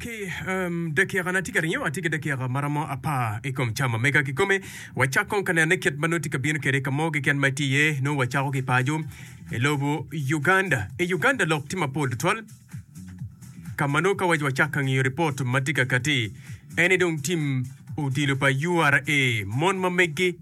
Ki um, dakikana tye ka ringo, atye ki dakika maromo apar i kom cam ma mega kikome. Wacak kong ka nenone kit ma nongo tye ka bino kwede ka mo keken ma itye iye. Nongo wacako ki paco i lobo Uganda. I Uganda lok tye mapol tutwal. Ka ma nongo ka waco wacak ka ngiyo ripot ma tye ka kati, en ni dong tim odilo pa URA mon ma meggi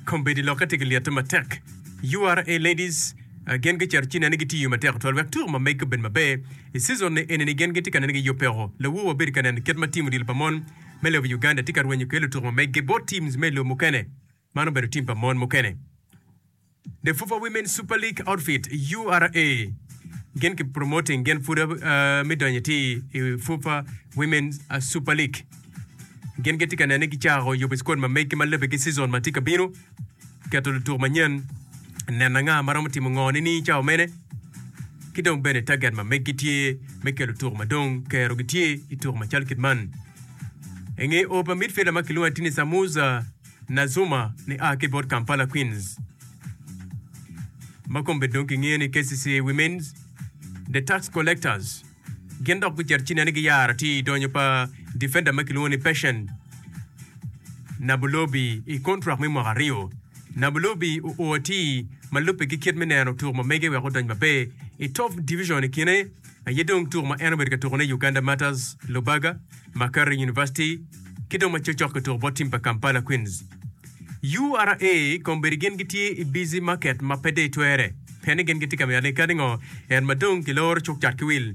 Kombeddi lokke tye ki lyete matek. URA Ladies gin gicito ci nene gitiyo matek tutwal wek tuko ma megi obed maber. I cizon-ni enini gin gitye ka nene giyubbeko. Lawu wabedo ka neno kit ma tim odilo pa mon me lobo Uganda tye ka rwenyo kwede lutuko ma megi bot teams me i lobo mukene. Man obedo tim pa mon mukene. The Fufa Women Super League Outfit, URA, gin ki promoting gin pud uh, me donyo ti i Fufa Women uh, Super League. Gin gitye ka nene gicako yubo squad ma megi ma lebe ki season ma tye ka bino, keto lutuk manyen, neno anga ma romo timo ngo ni ni cawa mene, ki dong bene target ma megi tye me kelo lutuk ma dong kero gitye i tuk macal kit man. Enge opa midfielder ma kilwongo ni Tini Samuza Nazuma ni a ki bot Kampala Queens ma kombe dong kingeyo ni KCC Women's The Tax Collectors gin dok gucito ci nene giyaro atir i donyo pa difenda ma kilwongo ni Patient Nabulobi i kontrak me mwaka aryo. Nabulobi oo atir ma lubbe ki kit me neno tuk ma mege wek odony maber i Top Division i kine aye dong tuko ma en obedo ka tukone i Uganda Martyrs, Lubaga, Makerere University, ki dong ma cokcok ki tuko bot tim pa Kampala Queens. URA kombeddi gin gitye i busy market ma pe dei twere, peni gin gitye ka mito ane kadi ngo en ma dong kiloro cuk cat ki wil.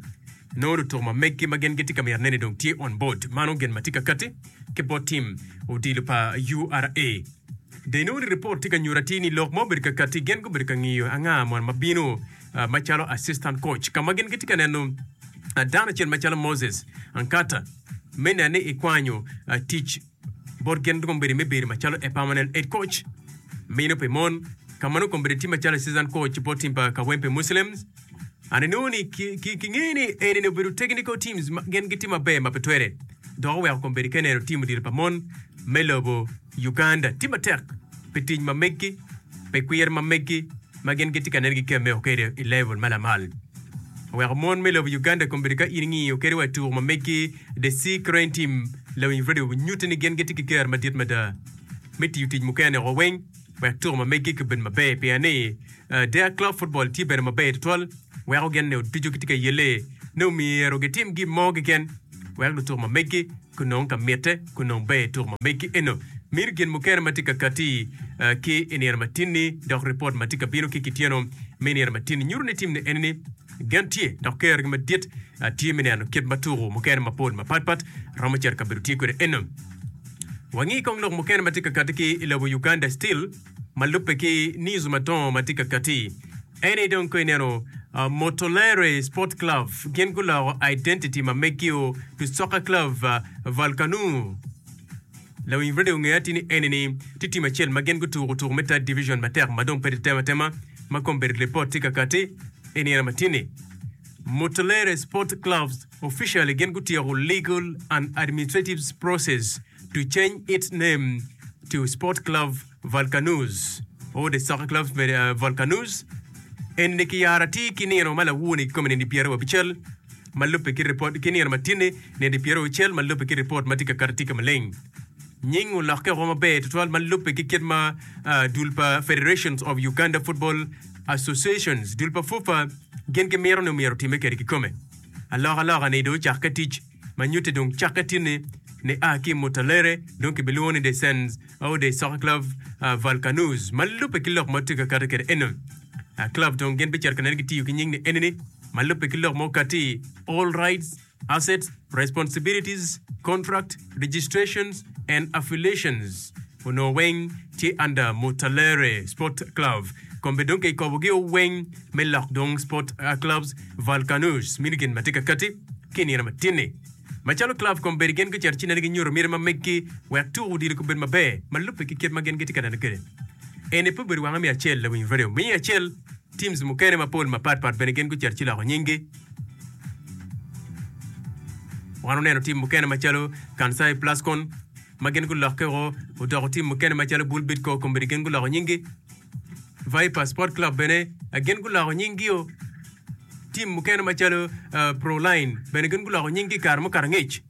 Nongo lutuko ma meggi ma gin gitye ka mito neni dong tye on board, mano gin ma tye ka kati ki bot tim odilo pa URA. Dei nongo ni report tye ka nyuto atir ni lok ma obedo ka kati gin gubedo ka ngiyo anga mon ma bino. ah, macalo assistant coach, ka ma gin gitye ka neno ah, dano acel macalo Moses Ankata me neno ni ikwanyo ah, tic bot gin dong obedo me bedo macalo e permanent head coach mino pi mon ka ma nongo kombedde tye macalo assistant coach bot tim pa Kawempe Muslims. Ani nongo ni ki- ki- kingeye ni eni ni obedo technical teams ma gin gitye maber ma pe twere dok oweko kombedde ka neno tim odilo pa mon me lobo Uganda tye matek pi tic ma meggi pi kwir ma meggi ma gin gitye ka nen ki kemme o kede i level ma lamal oweko mon me lobo Uganda kombedo ka in ingiyo kede wa tuku ma megi The Sea Crane Team lawiny radio nyuti ni gin gitye ki ker madit mada me tiyo tic mukene o weng wek tuku ma megi ki bed maber pien ni der club football tye bene maber tutwal weko gin ni oducu gitye ka yelle ni omyero gitim gin mo keken wek lutuku ma megi kun nongo ka mitte, kun nongo ber ituk ma megi eno. Miti gin mukene ma tye ka katti ki i nino matin-ni, dok ripot ma tye ka bino ki kityeno me nino matin-ni nyuto ni tim ni eni ni, Gen tye, dok kerogi madit tye me neno kit ma tuku mukene mapol mapatpat romo cito ka bedo tye kwede eno. Wangi kong lok mukene ma tye ka katti ki i lobo Uganda Still ma lubbe ki news madongo ma tye ka katti. Eni dong ka ineno Motolery Sport Club gin guloko identity ma megi-o to Soccer Club Valkanu. Lawiny Radio ongeyo atir ni enini tye tim acel ma gin gutuko tuko me Third Division matek ma dong pe tye tema tema ma kong bedo lipot tye ka kati i nino ma tye-ni. Motolery Sport Club officially gin gutyeko legal and administrative process to change its name to Sport Club Vulcanus, or the soccer club Vulcanus, eni ni kiyaro atir ki nino ma lawone kikome nedi pyera wa bicel ma lubbe ki report ki nino matine nedi pyera wa bicel ma lubbe ki report ma tye ka kato tye ka maleng. Nying olokke oko maber tutwal ma lubbe ki kit ma uh, dul pa Federations of Uganda Football Associations, dul pa FUFA, gin gimito ni omyero time kede kikome. Alok aloka ni do ocakke tic. ma nyutte dong cakke tye ni ni a ki Muttalere dong kibilwongo ni De Sens au De Soccer Club uh, Valkanuz ma lubbe ki lok ma tye ka kati kede eno. Uh, club dong gin bicito ka nene gitiyo ki nying ni enini ma lubbe ki lok ma okati all rights, assets, responsibilities, contract, registrations and affiliations. Onongo weng tye under Muttalere Sports Club kombe dong ki kobo gio weng me lok dong Sports Clubs Valkanus mini gin matye ka kati ki inino matin ni. Macalo club kombe gin gucito ci nene gi nyuto miti ma meggi wek tuko odilo kobed maber ma lubbe ki kit ma gin gitye ka neno kwede. Eni pe obedo wange me acel lawiny radio me acel teams mukene mapol mapat pat bene gin gucito ci loko nyinggi. Wan oneno team mukene macalo Kansai Plascon, ma gin gulokke o odoko tim mukene macalo Bull Bidco Comedy gin guloko nyinggi, Viper Sport Club bene gin guloko nyinggi o, tim mukene macalo uh, Proline bene gin guloko nyinggi i kare mukato angec.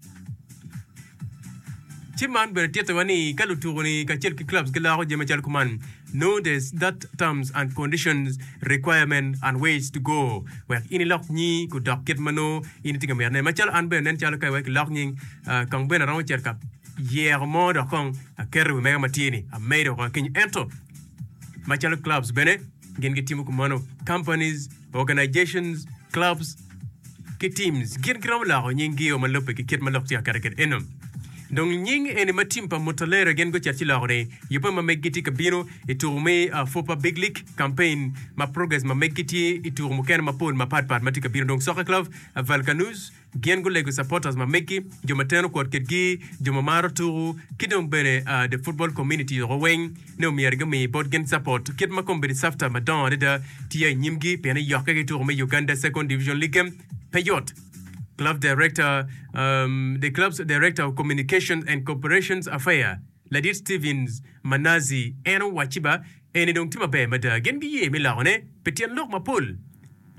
Ci man bene tittiwa ni ka lutuku-ni kacel ki clubs giloko jami macalo kuman, notice that terms and conditions, requirement and ways to go wek in ilok nyi kudok kit ma nongo In itye ka mito ne macalo an bene nen calo ka iwek ilok nying kong bene aromo cito ka yeko mo dok kong aketo wi mega matye ni amedo woko akinyo ento macalo clubs bene gin gitimo kumano companies organizations clubs ki teams gin giromo loko nying gio ma lubbe ki kit ma lok tye aketo kede eno dong nying eni ma team pa mutalera gin gucet ci loko ni yubbe ma meggi tye ka bino I tuko me Fupa Big League, campaign ma progress ma meggi tye i tuko mukene mapol mapat pat ma tye ka bino dong Soccer Club Valkanuz gin gulego supporters ma meggi, jo ma teno kwot kitgi, jo ma maro tuku ki dong bene the football community woko weng ne omyero gumi bot gin support kit ma kombedi safta madongo adada tye i nyimgi pien iyokke ki tuko me Uganda Second Division League pe yot. Club Director, um, the club's Director of Communications and Corporations Affair, Ladit Stevens ma Nazi en owacci ba, Eni dong tye maber mada. Gin giye me lokone pi tyen lok mapol.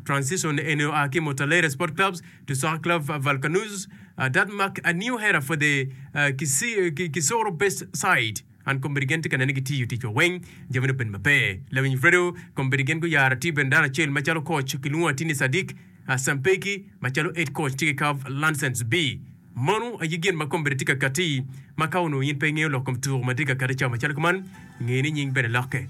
Transition eni oa ki Motalaere Sport Clubs, Tussauerklauf Valkanus, Dadmark, New Hera for the Kisoro Best Side. An kombeddi gin tye ka nene gitiyo ticwa weng, jamine obedo maber. Lawiny Fredo, kombeddi gin guyaro atye bene dano acel macalo coach, kilwongo atye ni Sadik Sampeki, macalo head coach tye ki Karl Lansens B. Mano aye gin ma komine tye ka katti. Ma ka onongo in pe ingeyo lok kom tuko ma tye ka katti cawa macalo kuman, nge ni nying bene lokke.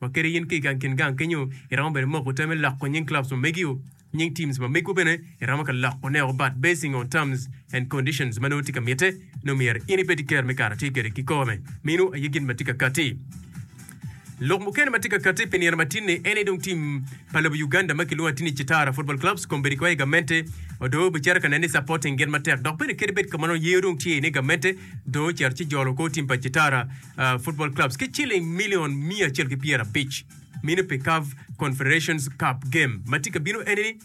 Ma kadi in ki i gang kin gang kenyo, iromo bene moko te me loko nying clubs ma megi-o, nying teams ma megwu bene iromo ka loko ne o but basing on terms and conditions ma nongo tye ka mitte, nongo myero in ibed ker me kare tye kede ki kome. Meno aye gin ma tye ka katti. Lok mukene ma tye ka katte pi nino matinni ene dong tim pa lobo Uganda ma kilwongo atini Chitara Football Clubs kombeddi kong i gamente odoo bicito ka neno ni supporting gin matek dok bene kadi bed kamanno yee dong tye ni gamente dong ocito ci jolo kor tim pa Chitara Football Clubs ki ciling million miya acel ki pyera abic mino pi CAF Confederations Cup game ma tye ka bino enini.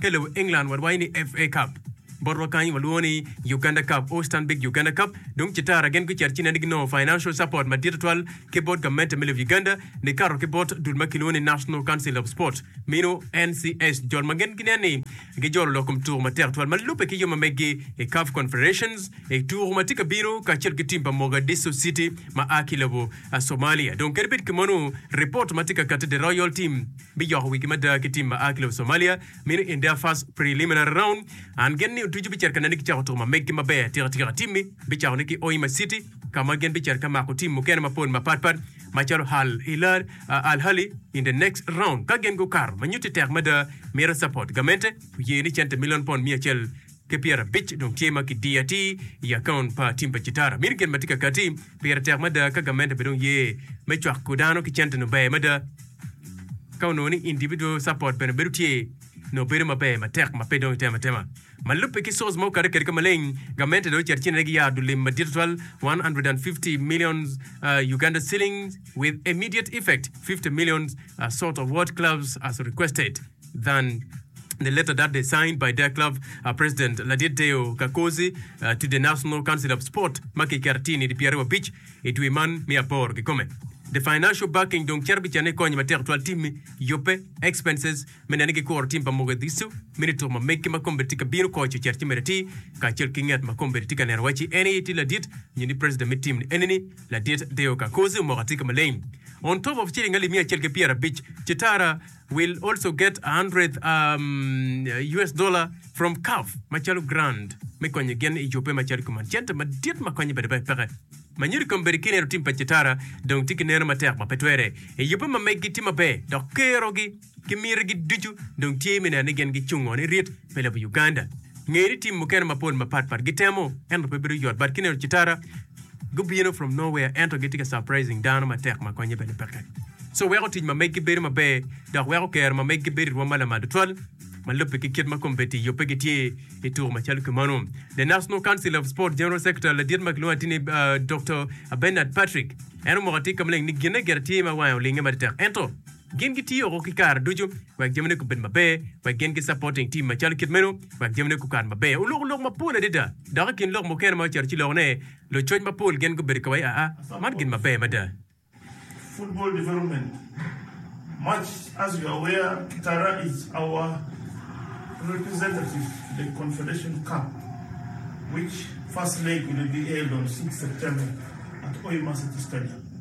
ki lobo England wawaco ni FA Cup. Bot wakanyi walwongo ni Uganda Cup or Stanbic Uganda Cup. Dong Citara gin gucito ci neno ginongo financial support madit tutwal ki bot gamente me lobo Uganda nikato ki bot dul ma kilwongo ni National Council of Sport, meno NCS, jol ma gin ginen ni gijolo lok kom tuko matek tutwal ma lubbe ki yo ma meggi i CAF Confederations i tuko ma tye ka bino kacel ki tim pa Mogadishu City ma a ki lobo Somalia. Dong kadi bed kemonu, ripot ma tye ka kati The Royal Team me joko wigi mada ki tim ma a ki lobo Somalia, meno in their first preliminary round, and gen ni otuco bicito nene gicako tuko ma meggi maber atika tika, timmi bicako ne ki Hoima City ka ma gin bicito ka mako tim mukene mapol mapat pat macalo Al Hilal, Al Ahly in the next round ka gin gukato ma nyutti tek mada mito support gamente oye ni cente million pond miya acel. ki pyerabic dong tye ma kidiyo atir i akaunt pa tim pa citara. Mini gin ma tye ka kati pire tek mada ka gamente pe dong ye me cwako dano ki cente nongo ber mada. Ka onongo ni individual support bene bedo tye, nongo bedo maber matek ma pe dong itemo atema. Ma lubbe ki source ma okadde kwede ka maleng, gamente dong ocito ci nene giyaro dul lim madit tutwal K150 million with immediate effect, fifty million sort of what clubs as requested. than the letter that they signed by their club uh, president ladit Deo Kakozi uh, to the National Council of Sport ma kiketo tye nidi pyeraryo abic i dwe man me aboro kikome. The financial backing dong cito bicanne i kony matek twal timmi yubbe expenses me neno ni gikuro tim pa Mogadishu me nituko ma meggi ma kombeddi tye ka bino koc ocet ci mere ti kacel ki nget ma kombeddi tye ka neno waci en aye tye ladit nyo ni president me tim ni enini ladit Deo Kakozi omoko atika maleng on top of shilling alip miya acel ki pyerabic ci tara will also get a hundred um, US dollar from CAF macalo grant me konyo gin i yubbe macalo kuman. Cente madit ma konyo bade peke. Manyodi kombedi ki neno tim pa Cetara dong tye ki neno matek ma pe twere. I yubbe ma meggi tye maber dok kerogi ki mitogi ducu dong tye me neno ni gin gicungo ni rit me lobo Uganda. Ngeye ni tim mukene mapol mapatpat gitemo ento pe bedo yot but ki neno Cetara Gubino from nowhere ento gitye ka surprising dano matek ma konye bene peke. So weko tic ma meggi bedo maber dok weko kero ma meggi bedo i rwom ma lamal tutwal ma lubbe ki kit ma kombeddi yubbe gitye i tuko macalo ki mano. The National Council of Sport General Secretary ladit ma kilwongo atini Doctor Bernard Patrick en omoko atika maleng ni gine gire tye ma wange olinge matitek ento Gin gitiyo woko ki kare ducu wek jamine gubed maber wek gin ki supporting team macalo kit meno wek jamine gukat maber. Oloko lok mapol adada dok i kin lok mukene ma oceto ci loko ne lucoc mapol gin gubedo kawai aa man gin maber mada. Football development much as you aware Kitara is our representative to the Confederation Cup which first leg will be held on six September at Oi Marsity Stadium.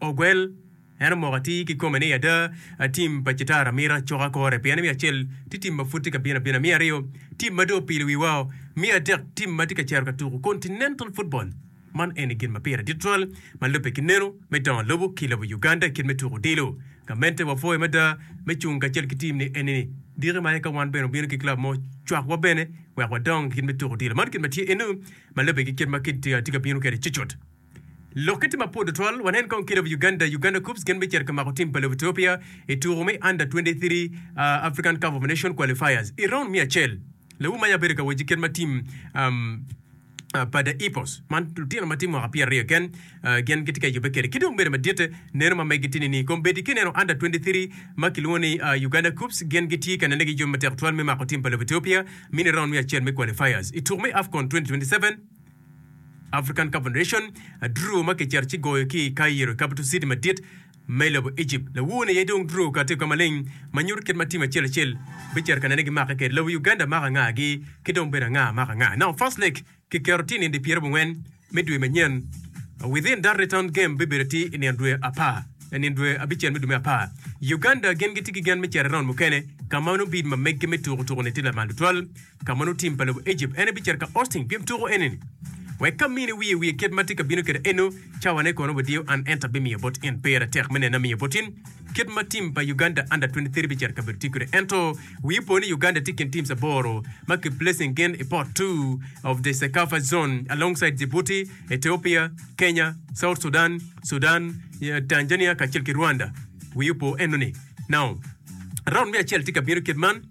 Ogwel, En omoko atir ki kome ni, Ada, a tim pa Citara mito acoka kore, pien me acel tye tim ma pud tye ka bino abina, me aryo tim ma dong opilo wiwao, me adek tim ma tye ka cito ka tuko Continental Football. Man eni gin ma pire dit twal ma lubbe ki neno me dongo lobo ki lobo Uganda i kit me tuko odilo. Gamente wapwoyo mada me cung kacel ki tim ni eni-ni. Diki ma aye ka wan bene obino ki club mo cwakwa bene wek wadong i kit me tuko odilo. Man kit ma tye eno ma lubbe ki kit ma kit tye ka bino kwede cucut. Lokke tye mapwod tutwal, wanen kong kit lobo Uganda, Uganda Koups gin bicito ka mako tim pa lobo Ethiopia i tuku me Under 23 African Cup of Nations Qualifiers i raund me acel. Lawu maya bedo ka wec ki kit ma tim pa The Hippos man lutino ma tye mwaka pyera aryo keken gin gitye ka yubbe kwede ki dong bedo madit. Neno ma megi tye nining? Kombeddi ki neno Under 23 ma kilwongo ni Uganda Koups gin gitye ka nene ki jami matek tutwal me mako tim pa lobo Ethiopia mini raund me acel me Qualifiers i tuku me Afcon 2027. African Cup Nation, a draw ma kicito ci goyo ki i Cairo i capital city madit ma i lobo Egypt. Lawo ni aye dong draw kati oka maleng ma nyuto kit ma team acel acel bicito ka nene gimake kede. Lawo Uganda mako anga gi ki dong bene anga mako anga. Now first leg kiketo tye i nindi pyera bongwen me dwe manyen. Within that return game bibedo ati i nino dwe apar i nino dwe abicel me dwe me apar. Uganda gin giti ki gen me cito i round mukene ka ma nongo bid ma meggi me tuku tuku ni ti lamal tutwal. Ka mono tim pa lobo Ejipt, en ebicito ka Austin pien tuko enini. Wek ka mine wiye wiye kit ma tye ka bino kwede eno, cawane kono wadiyo an ento abimiyo bot in. Pera tek me neno amiyo bot in kit ma tim pa Uganda Under 23 bicito kabedo tye kwede ento wi ipo ni Uganda tye i kin teams aboro ma ki placing gin i pot two of the Cecafa zone alongside Djibouti, Ethiopia, Kenya, South Sudan, Sudan, Tanzania kacel ki Rwanda. Wi ipo enoni. Now, round me acel tye ka bino kit man.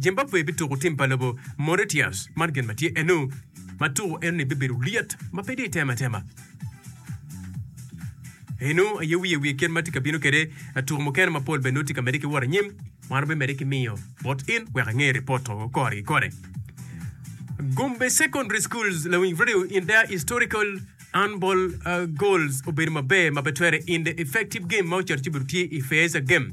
Zimbabwe bituko tim pa lobo Mauritius. Man gin ma tye eno ma tuko enoni bibedo lyet ma pe dye tema tema. Eno aye wiye wiye kit ma tye ka bino kwede tuko mukene mapol bene tye ka mede ki wot anyim. Wan obimede ki miyo bot in wek ange ripot to kore ki kore. Gombe Secondary Schools lawing radio in their historical handball uh, goals obedo maber ma pe twere in the effective game ma ocito ci obedo tye i Feeza game.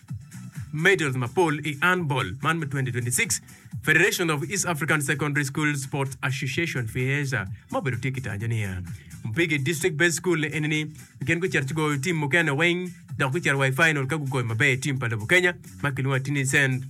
medals mapol i handball man me 2026. Federation of East African Secondary School Sports Association, FEASA, ma obedo tye ki tanyo niya, Mpigi District Based School eni ni gin gucito ci goyo tim mukene weng dok gucito wa i final ka gugoyo maber tim pa lobo Kenya ma kilwongo ni Tinisend.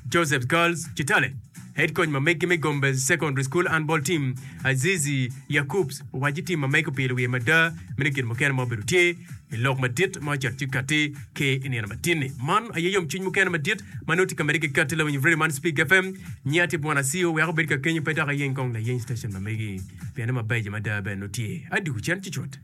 Joseph's Girls Kitale Head Coach ma megi me Gombes Secondary School Handball Team, Azizi Yacoops owaco tim ma mege opilo wiye mada me nongo gin mukene ma obedo tye i lok madit ma ocito ci katti ki i nino matini. Man aye yomcwiny mukene madit ma nongo tye ka medde ki katti lawiny redio man Speak FM. Nyiya tye Bwana Siyo wek obed ka kenyo pe dok ayeny kong layeny station ma megi pienne mabeco mada bene nongo tye. Adi Ocen cucut.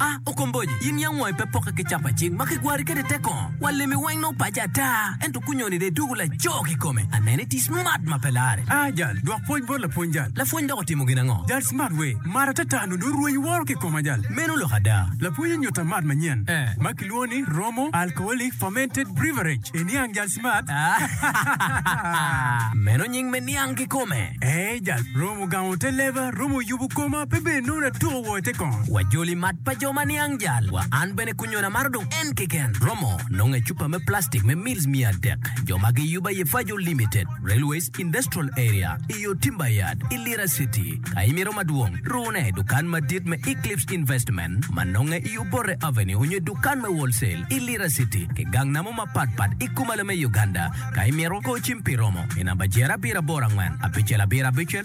A Okomboji, in yam wangi pe pokke ki capacit ma kigwari kwede tek kongo? Wa limi weng nongo pace ata, ento kunyoni dong idwogo laco kikome. Aneno iti smart ma pe larre. A Jal, dwok pwoc bot lapwony jal. Lapwony dok otimo gin ango? Jal, Smart we mara te tar nongo dong rwenyi woro kikoma jal. Meno lok ada. Lapwony onyuta mat manyen ma kilwongo ni Romo Alcoholic Fermented Breverage e niang jal smart. A Meno nying me niang kikome? A Jal, Romo gamo te leba, romo yubu koma pe bedo nongo natuko. Wa joli mat pa jo ma niang jal wa an bene kunyona maro dong en keken romo nongo ecupa me plastic me mils miya adek jo ma gi yuba ye fajo limited railways industrial area i yo timber yard i lira city ka imito madwong rune i dukan madit me eclipse investment ma nonge i obote avenue onyo i dukan me wholesale i lira city ki gang namo ma pat pat i kumalo me uganda ka imito go cim pi romo i namba jer abiro aboro angwen abicel abiro abicel